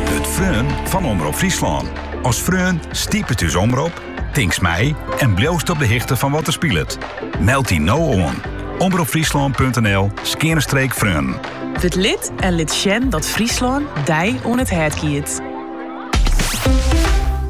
Wurd freon fan Omrop Fryslân. As freon stipet ús omrop, tinkst mei en bliuwst op de hichte fan wat der spilet. Meld dy no oan, omropfryslân.nl skeane streek freon. Wurd lid en lit sjen dat Fryslân dy oan it hert giet.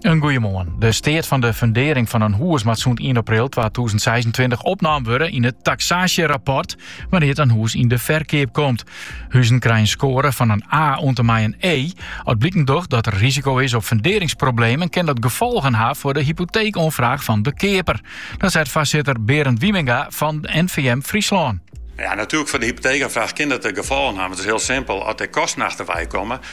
In goeiemoarn. De steat fan de fundering fan in hûs moat sûnt 1 april 2026 opnaam wurde yn it taxaasjerapport wannear't in hûs yn de ferkeap komt. Huzen krije in skoare fan in A oant en mei in E. As bliken docht dat der risiko is op funderingsproblemen, kin dat gefolgen ha foar de hypoteekoanfraach fan de keaper. Dat seit foarsitter Berend Wieminga fan NVM Fryslân. Ja, natuerlik foar de hypoteekoanfraach kin dat gefolgen ha, want it is hiel simpel, as der kosten achterwei komme,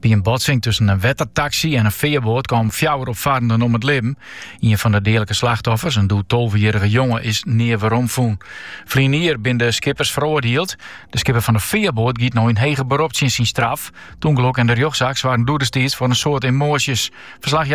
By in botsing tusken in wettertaksy en in fearboat komen fjouwer opfarrenden om het libben. Ien fan de deadlike slachtoffers, in doe 12-jarige jonge is nea werom fûn. Ferline jier bin de skippers feroardiele. De skipper fan de fearboat giet no in heger berop tsjin syn straf. It ûngelok en de rjochtsaak soargen doe destiids foar in soad emoasjes. Ferslachjouwer